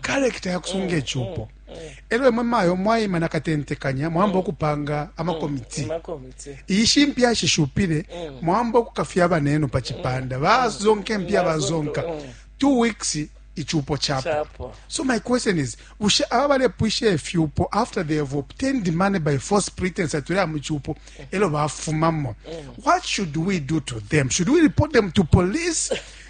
karekita ya kusunga icupo elo imwe mayo mwaima na katentekanya mwamba ukupanga amakomiti iyi shimpi yashishupile mwamba ukukafya abanenu pa cipanda bazonka impi abazonka two weeks icupo chapo so my question is bushe aba balepwisha ifyupo after they have obtained money by force pretense atulea mu cupo elo bafumamo what should we do to them should we report them to police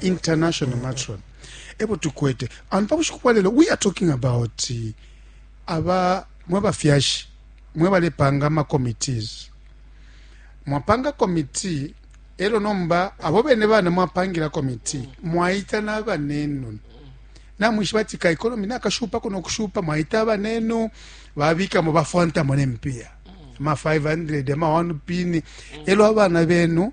international mm. matron ebo tukwete and pa bushiku bwa lelo we are talking about eh, aba mwe bafyashi mwe balepanga ama committees mwapanga committee elo nomba abo bene bana mwapangila committee mwaita na banenu namwishi bati ka economy nakashupa kuno kushupa mwaita banenu babikamo bafwantamo nempiya ma 500 ma 1 pini elo abana benu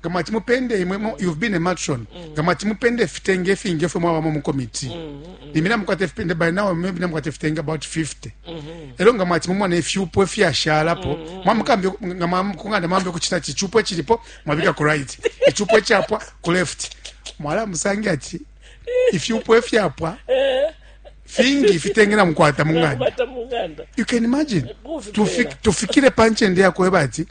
nga mwati mupende imwe mo- you've been a matron nga mwati mupende ifitenge ifingi efwe mwabamo mu komiti limbi namukwata ifipende by now maybe namukwata ifitenge about 50 elo nga mwati mumona ifyupo efyashalapo mwamukambi nga mwamukunganda mwambi okuchita ati ichupo echilipo mwabika ku right ichupo echapwa ku left mwala musange ati ifyupo efyapwa fingi ifitenge namukwata munganda bata munganda you can imagine Kufi- Tufik- tufikire panchende yakweba ati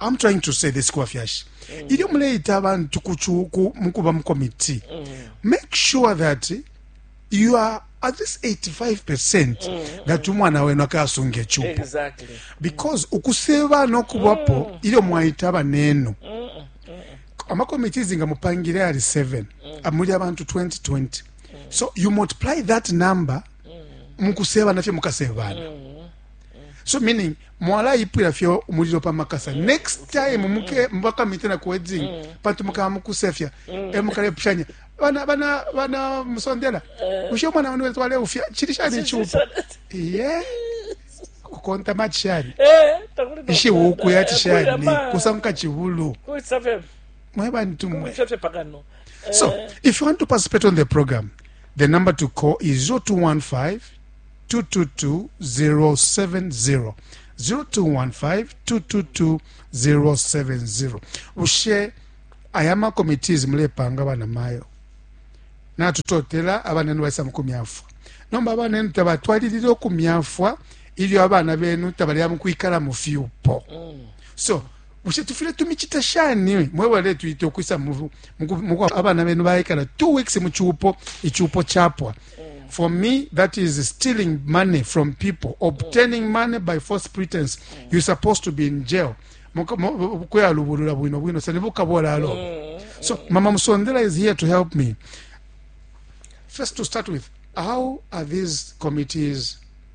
I'm trying to say this kuba fyashi mm. ilyo muleita abantu kuchuku mukuba mu committee mm. make sure that you are at this 85% mm. Mm-hmm. that umwana wenu akasunga echupo exactly. because mm. ukuseba nokubapo mm. ilyo mwaita abanenu mm. mm, mm. amakomiti zinga mupangire ali 7 mm. amuli abantu 2020 mm. so you multiply that number mm. mukuseba nafye mukasebana mm. so meaning mwalaipwila fye umulilo pa makasa next time muke mubakamite na kuwedzing mm. pantu mukaba mukusefya mm. e mukalepushanya bana bana bana musondela eh. ushe mwana wanu wetwale ufya chili shani chupo yeah kukonta machi shani eh, ishi wuku yati shani kusanguka chivulu mweba ntumwe so eh. if you want to participate on the program the number to call is 0215 222-070, 0215-222-070. Bushe aya ma committees mulepanga bana mayo natutotela abana enu baisa mukumyafwa nomba abana enu tabatwalilile okumyafwa ilyo abana benu tabalya mukwikala mu fyupo so Bushe tufwile tumicite shani mwe baletwita ukwisa muko abana benu baikala two weeks mu cupo icupo chapwa for me that is stealing money from people obtaining money by false pretense you supposed to be in jail kuyalubulula bwino bwino sene bukabolalo so mama musondela is here to help me first to start with how are these committees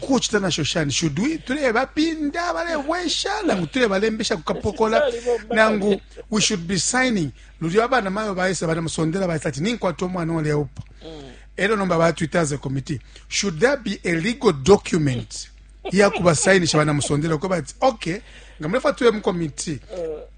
kucita nasho shani shudwi tulebapinda balebwesha nangu tulebalembesha kukapokola nangu we should be signing lulyo abana mayo baisa banamusondela baisa ati ninkwata omwana oleupa elo nomba batwita as a committee should there be a legal document yakubasayinisha banamusondela uko bati okay nga mulefa tube mu committee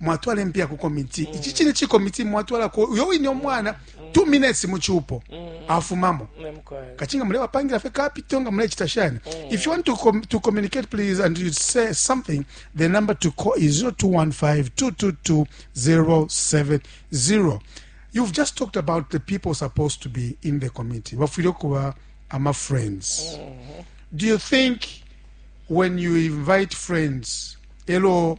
mwatwala impiya ku komiti mm. ici cine cikomiti mwatwalako uyo wine omwana mm. two minutes mu cupo mm. afumamo kacinga mulebapangila fe kapito nga mulecita shani if you want to, com to communicate please and you say something the number to call is 0215222070 you've just talked about the people supposed to be in the committee bafwile okuba ama friends mm-hmm. do you think when you invite friends elo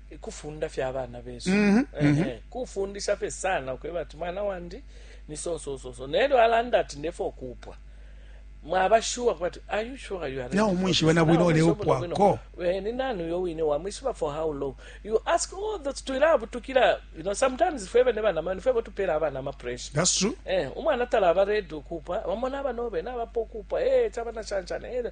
kufunda fye abana besu mm -hmm, mm -hmm. kufundisha fye sana ukweba ati mwana wandi ni sosososo nelyo alanda ati ndefo okupwa mwaba sure kubati are you sure you are na umwishiba na bwino ole upwa ko eh, ni nani yo wine wa mwishiba for how long you ask all oh, that to love to kila you know sometimes if ever never na man if ever to pera abana ma pressure that's true eh umwana tala ba ready ukupa bamona abanobe na bapokupa eh chaba na chanchana eh